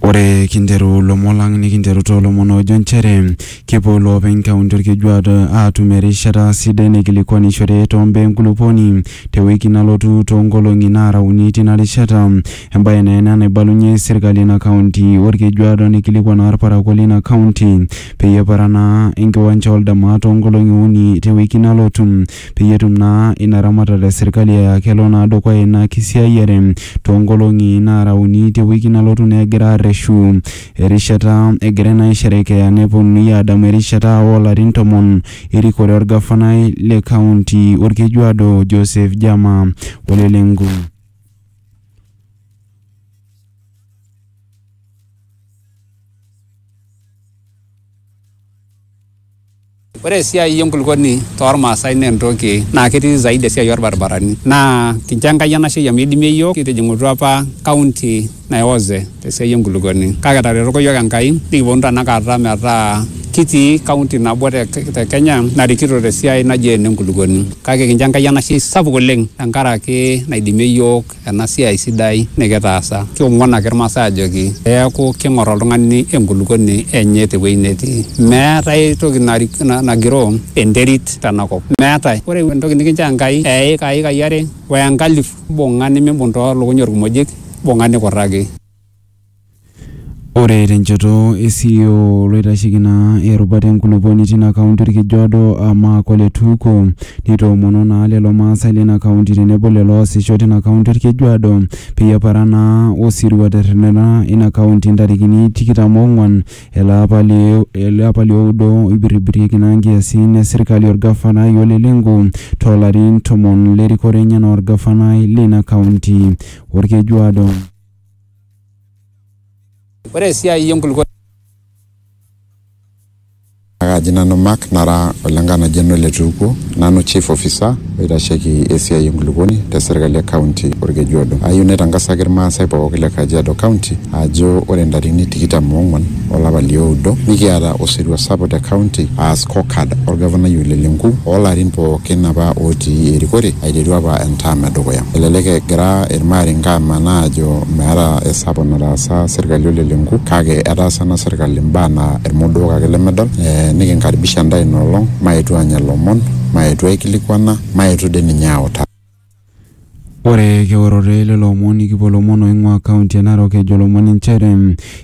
Ore kinteru lomon lang nikinteru too lomon oojo nchere kepuo loopeny kaunti Olkejuado aatum erishata sidai naikilikuanishore too mbaa enkulupuoni te wiki nalotu too nkolong'i naara uni tina rishata. Embae naa ena naibalunye serkali ina kaunti Olkejuado neikilikuan naa ilparakuo leina kaunti peyie eparaa naa enkiwanja oldama too nkolong'i uni te wiki nalotu. peyie etum naa ina ramatare e serkali aa kelo naa dukuya ina kisiayiare toonkolong'i naara uni te wiki nalotu naa egira aarreshu erishata egirai naa aisherekea neponunui aadamu erishata oo larin tomon erikore olgafanai le kaunti Olkejuado Joseph Jama Ole Lenku. Ore esiai enkulukuoni toormaasai naa entoki naa ketii zaidi esiai orbaribarani naa kincho Enkai enashe amu idimie iyiook kitijing'utua apa kaunti naionze tesiai enkulukuoni kake etaretoko iyiook Enkai nikiponu tanakata metaa kitii kaunti nabo te Kenya narikito tesiai naji ene nkulukuoni kake kincho Enkai enashe sapuk oleng tenkaraki naidimie iyiook ena siai sidai nikitaasa. Kiong'uan ake Ilmaasai aajoki pee eaku keing'or oltung'ani enkulukuoni enye te wueji netii. Meetae ae toki nagiroo enterit tena kop. Meetae. Ore entoki nikinchoo Enkai aa eika, iikai are o enkalifu, imbung'a nimimbung too lukuny olkimojik, imbung'a nikurraki. Ore tenchoto e CEO loitasheki naa erubata enkulupuoni tina kaunti Orkejuado aa Mark Ole Tuko nitoomono naa lelo maasai lina kaunti tenebo lelo oosisho tina kaunti Orkejuado peyie eparan naa osirua terretena ina kaunti ntarikini tikitam oong'wan ele apa li ele apa lioudo oibirribirieki naa nkiasin e sirkali orgafanai Ole Lenku toolarin tomon lerikore enye enaa orgafanai lina kaunti Orkejuado. Ore esiai enkulukuoni Kaji nanu Mark nara olenkanajani ole Tuukuo, nanu chief officer oitasheki esiai enkulukuoni te serkali e kaunti Olkejuado. Ayieu naitangasaki ilmaasai pooki le Kajiado kaunti ajo ore ntarikini tikitam oong'uan olapa lioudo nikiata osirua sapuk te county aa scorecard olgavanai Ole Lenku oolarin pookin apa ootii erikore aiteru apa entaam edukuya. Elelek egira ilmaarenke amanaa aajo meeta esapuk nataasa serkali Ole Lenku kake etaasa ena serkali imbaa naa ilmodook ake lemedol. Nikinkaribisha intae ina olong maetu aanya ilomon, maetu aikilikuana, maetu dii ninye aautaa. Ore keorore lelo omon nikipuo ilomon oing'ua kaunti e Narok ejo ilomon inchere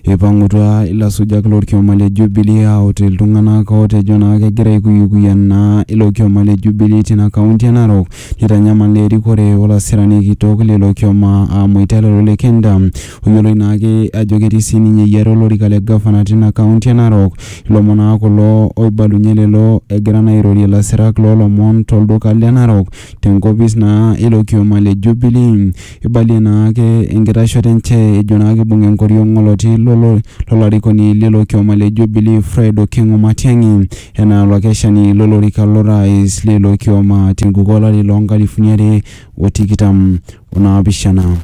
eipang'utua ilasujak lorkioma le Jubilee aut iltung'anak ootejo naa kegira aikuyikuya naa ilo kioma le Jubilee tina kaunti e Narok neitanyamal naa erikore olasirani kitok lilo kioma aa Moita Lelo Lekenta oyioloi naake ajo ketii siininye eyiata olorika le gavana tina kaunti e Narok. Ilomon naa kulo oibalunye lelo egira naa airorie ilasirak loolomon tolduka le Narok tenkopis naa ilo kioma le Jubilee. Eibalie naa ake enkitashoto enche ejo naa keibung enkoriong oloti lo lolarikoni lilo kioma le Jubilee Fred Okengo Matiangi enaa olakeshani lo lorika lo rais lilo kioma te nkuku olari loo nkalifuni are o tikitam o naapishana.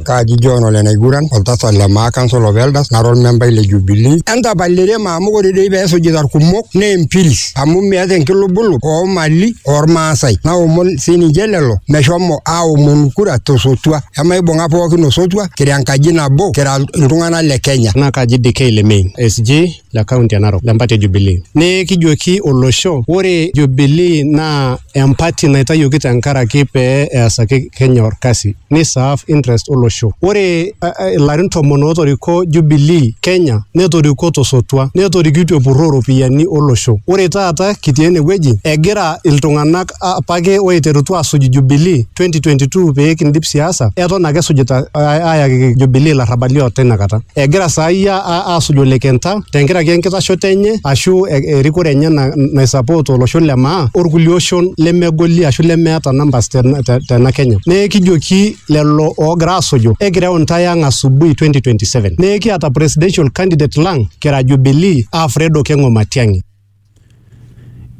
kaaji John ole naiguran oltasat le Maakans olo Veldas nara olmembai le Jubilee. Entapalere ema amu ore doi pee esujita ilkumok naa empiris amu meeta enkilubulu oo mali oo Lmaasai. Naomon sii ninche lelo meshomo aomonu kura to sotua. Emaibung'a pookin osotua kira enkaji nabo kira iltung'ana le Kenya. Naa kaji DK Lemein, SG. le kaunti e Narok le mpati e Jubilee. Nekijoki olosho ore Jubilee naa empati naitayioki tenkaraki pee easaki Kenya orkasi ni serve interest olosho. Ore uh, ilarin tomon ootoriko Jubilee Kenya netoriko tosotua netorikitie epurroo iropiyiani olosho. Ore taata kitii enewueji egira iltung'anak apake oiterutua asuj Jubilee 2022 pee kindip siasa eton ake esujita ayaki Jubilee ilarrabali o tina kata. Egira saai asuj Ole Kenta tenkaraki enkitashoto enye ashu erikore enye naisupport olosho le maa orkulie oshon lemegoli ashu lemeeta numbers tena Kenya. Neeku kijoki lelo oogira asuju ekireu intae ang' asubuhi 2027. Neeku kiata presidential candidate lang' kira Jubilee aa Fred Okeng'o Matiang'i.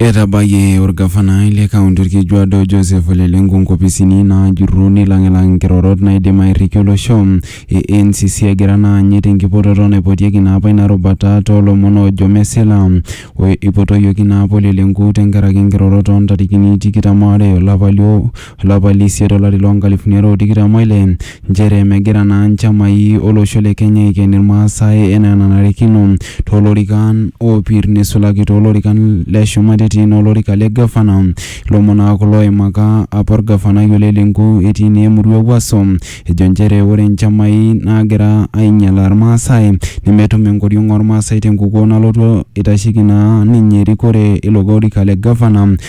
Etabayie orgavanai le kaunti Orkejuado Joseph Ole Lenku nkopisini naajurru neilang'ilang nkirorot naaidim airriki olosho e NCC egira naa anyit enkipototo naipotieki naa apa ina rubata too lomon oojo mesila. Eipotoyioki naa apa Ole Lenku tenkaraki nkirorot oo ntarikini tikitam o are o lapa olapa le isiet olari loo nkalifuni are o tikitam o ile nchere megira naa nchamai o losho le Kenya aiken Ilmaasae enaa enanarikino too lorikan oopir neisulaki too lorikan le shumata etii naa olorika le Gavana. Ilomon naa kulo oimaka apa Olgavanai Ole Lenku etii naa emurua e Wuaso ejo nchere ore nchamai naagira ainyalaa Ilmaasae nemetum enkoriong oo Ilmaasae te nkukuo nalotu eitasheiki naa ninye erikore ilo orika le Gavana.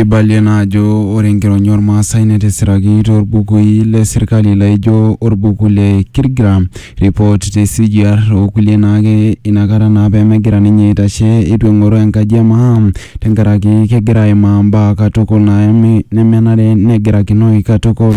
Eibalie naa ajo ore enkironya oolmaasai netisiraki too lbukui le sirkali laaijo olbuku le Kirgira Report te CGR o kulie naake inakata naa pee megira ninye aitashe eitu eng'oru enkaji e maa tenkaraki kegira aimaa mbaa katukul naeme nemenare negirakinoi katukul.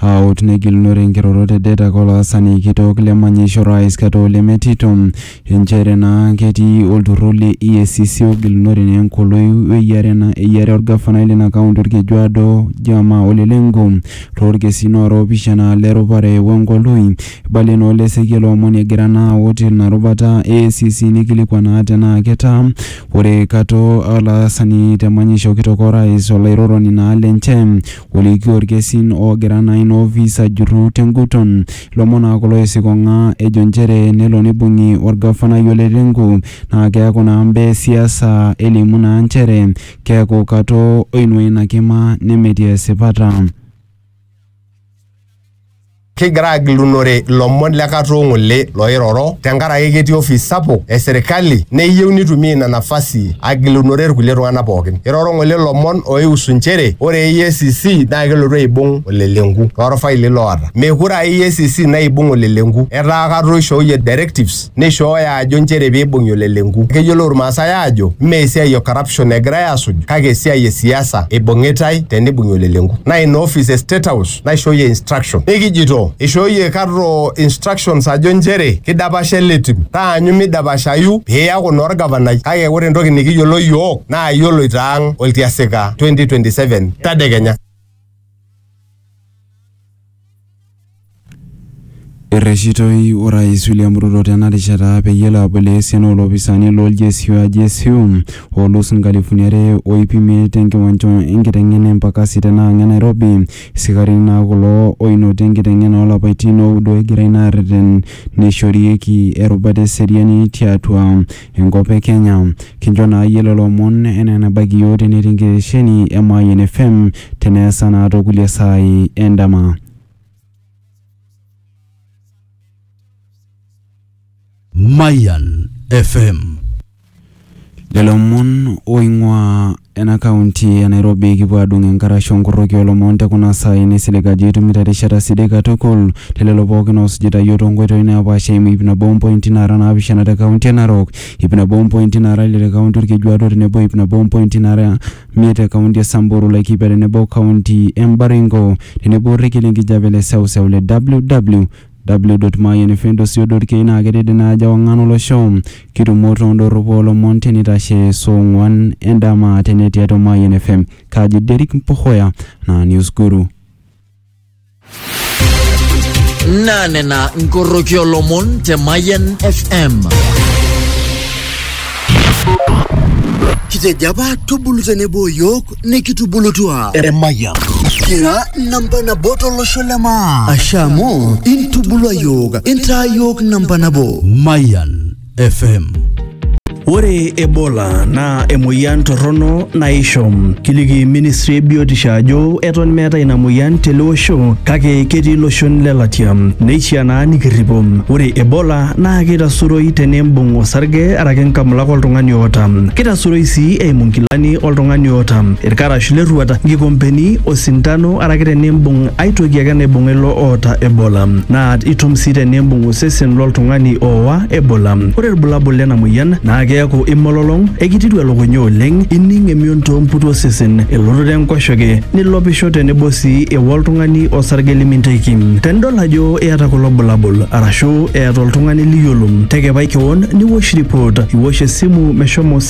Aut negilunore nkirorot e Detak olaasani kitok le manyisho Rais Kato Ole Metito inchere naa ketii olturrur le EACC ogilunore naa enkoloi weyiare naa eyiare olgafanai lina kaunti Olkejuado Jama Ole Lenku too lkesin oora oopishana le rupare wenkoloi. Eibalie naa Ole Sekia ilo omoni egira naa aut ina rubata e EACC neikilikuan naa tenaa ketaa ore Kato olaasani te manyisho kitok o Rais olairoroni naa lenche. Olikio ilkesin oogira naa ina ofis ajurru tenguton. Ilomon naa kulo oisikong'a ejo nchere nelo neibung'i olgafanai Ole Lenku naa keaku naa mbaa e siasa elimu naa nchere keaku katoo oinua ina kima nemetii esipata. Kigira agilunore lomon le katoo ng'ole looiroro tenkaraki ketii ofis sapuk e serikali neyieu nitumia ina nafasi agilunore ilkulie tung'ana pookin. Eiroro ng'ole lomon ooihusu nchere ore EACC naa kelotu aibung olelenku too lfaili loota. Mekure aa EACC naibung olelenku, etaa katoo eishooyie directives. neishooyo ajo nchere peibung'i olelenku. Keyiolou Irmaasai aajo mme esiai e corruption egirai aasuj kake esiai e siasa eibung'itai teneibung'i olelenku. Naa ina office e State House naishooyie instruction. Nikijito eishooyie Karro instructions ajo nchere keidapasha ele tim. Taanyu meidapashayu pee iyaku naa olgavanai kake ore entoki nikiyiolo iyiook naa iyioloito ang oltiasika 2027 tadekenya. Erreshitoi Orais William Ruto tena rishata peyie elo aboloo esiana oolopisaani loo GSU aa GSU oolus nkalifuni are o iip imiet tenkiwanja enkiteng'ena e Mpakasi tena ang e Nairobi. Isikarini naa kulo oinoti enkiteng'ena oo lapaitin ooudo egirai naa aarreten neishorieki erubata e seriani tiatua enkop e Kenya. Kincho naa iyie lelo omon enaa enabaiki iyiook tenetii nkitesheni e Mayian FM teneesa naa too kulie saai e ndama. Mayian FM. Lelo omon ooing'uaa. Ena county e Nairobi kipuo adung enkarash onkorroki olomon tekuna saai nisilig ajo itumito erishata sidai katukul telelo pookin oosujita iyiook toonkoitoi naapaasha eimu iip nabo ompointi naara naapishana te county e Narok, iip nabo ompointi naara ile te county Olkejuado o tenebo iip nabo ompointi naara miet te county e Samburu, Laikipia tenebo o county e Baringo tenebo orrekie lenkijape le seuseu le WW W. Mayian Fendosi o Dorkei naa ketejo ina ajo ewang'an olosho. Kitumo too ndorropu oo lomon te neitashe soo ong'uan e ndama te net tiatua Mayian FM. Kaaji Derrick Mpohoya naa Newsguru. Naa nena nkorroki oo lomon te Mayian FM. Kitejo apa tubulu tenebo o yook. nikitubulutua emayian kira namba nabo tolosho le maa asha amu intubulua yiok intaa yiok namba nabo Mayan FM. Ore Ebola naa emoyian torrono naisho. Kiliki ministry e biotisho ajo eton meeta ina moyian tele osho kake ketii iloshon le latia. Neishaa naa nikirripo. Ore Ebola naa keitasuroi tenimbung osarge araki nkamulak oltung'ani oota. Keitasuroi sii eimu nkilani oltung'ani oota ilkarash lerruata, nkikompeni, osintano araki tenimbung ai toki ake naibung'a ilo oota Ebola. Naa itum sii tenimbung osesen loltung'ani oowa Ebola. Ore ilbulabul lena moyian naa keaku imololong, ekitiru elukunya oleng, ining emion too mputi osesen, elototo enkoshoke, nilopisho tenebo sii ewa oltung'ani osarge liminteki. Tenidol ajo iyata kulo bulabul arashu eeta oltung'ani liyiolo, tekepai kewon niwosh ripot, iwosh esimu meshomo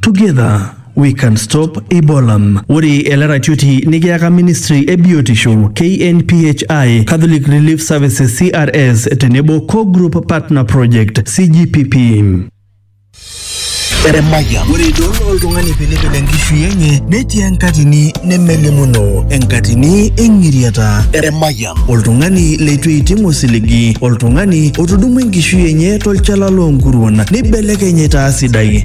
Together we can stop Ebola. Ore ele ratioti nikiyaka ministry e biotisho KNPHI, Catholic Relief Services CRS tenebo Co-Group Partner Project CGPP. Eremaya. Ore idol oltung'ani pilipil enkishui enye netii enkatini nemelimuno enkatini eng'iriata. Eremaya. Oltung'ani leitu eiting osiligi, oltung'ani otudumua enkishui enye tolchala loonkuruon neibelekeny aitaa sidai.